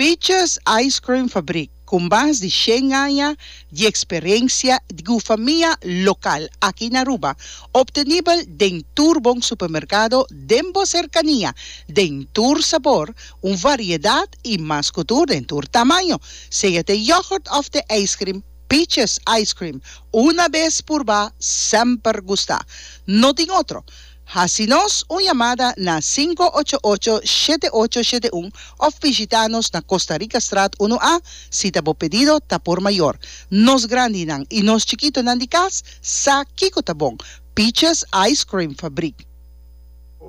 Peaches Ice Cream Fabrik, ku mas di shen aña di eksperensia di gufamia lokal aki na Aruba, optenibel den tur bon supermerkado den bo serkania, den tur sabor, un variedat i mas ku tur den tur tamaño. Sea te yogurt òf te ijskrim, Peaches Ice Cream, una bes purbá, semper gustá. No tin otro. Hasi nos un yamada na sinku ocho ocho shete ocho shete un of bishita nos na Costa Rica Straat unu A si ta bo pedido ta por mayor. Nos grandinan y nos chikitonan di cas sa kico ta bon, Peaches Ice Cream Fabriek.